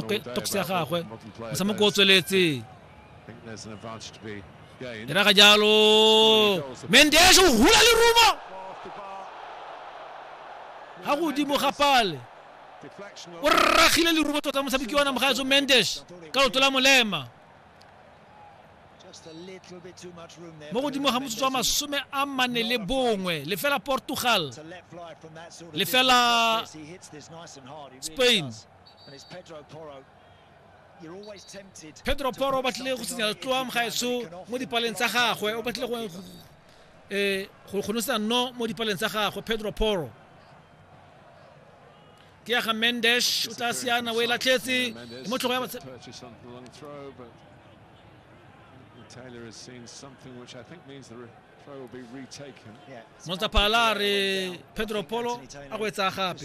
tokse ya gagwe motshameko o tsweletse e raga jalo mendes o hula le rumo ga godimo ga pale o rragile lerumo tota motshameki wa namagaetso mendes ka loto la molema mo godimo ga motsotso wa masome a mane le bongwe lefela portugal lefela spain nice pedro poro o batlile go senya tloa mogaetso mo dipaleng tsa gagwe o batlile go eh, go kgonosa no mo dipaleng tsa gagwe pedro poro ke ya ga mendesh o tla siana o e latlhetse mo tlhogo ya Taylor has seen something which I think means the throw will be retaken. Yeah. Montapalare Pedro Polo a go etsa gape.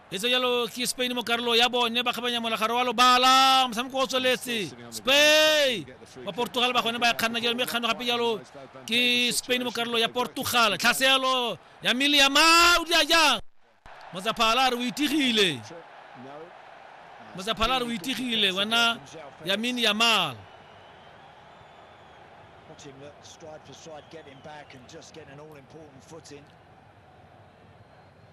e tse jalo ke spain mo karolo ya bone ba kgabanya molagaro wa lobala motshameko o tsweletse spain ba portugal ba gone ba kganna jalo mme kgano gape jalo ke spain mo karolo ya portugal tlhaselo ya mmele ya ma o dira jang motsaphala re o itigile motsaphala re o itigile wena ya mini ya mal him that stride for stride, getting back and just getting an all important foot in.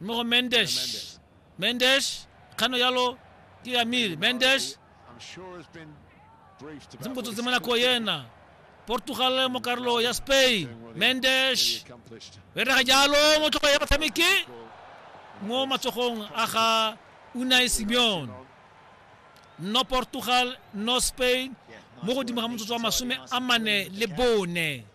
mo go mendes mendes kgano yalo ke ya miri mendes se mpotsotse mo nako yena portugal mo karolo ya spain mendes berega jalo mo tlhogo ya batshameki mo matsogong a ga unai simeon no portugal no spain mo godimo ga motsotso wa masome a mane le bone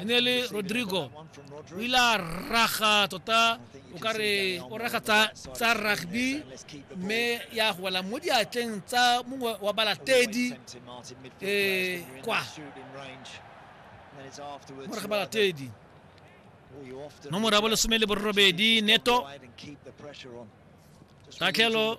e ne le rodrigo o ile a raga tota o ka re o raga tsa rugby mme ya go wela mo diatleng tsa mongwe wa balatedi um kwa moraga balatedi nomoro ya bolesome le borobedi neto tatlhelo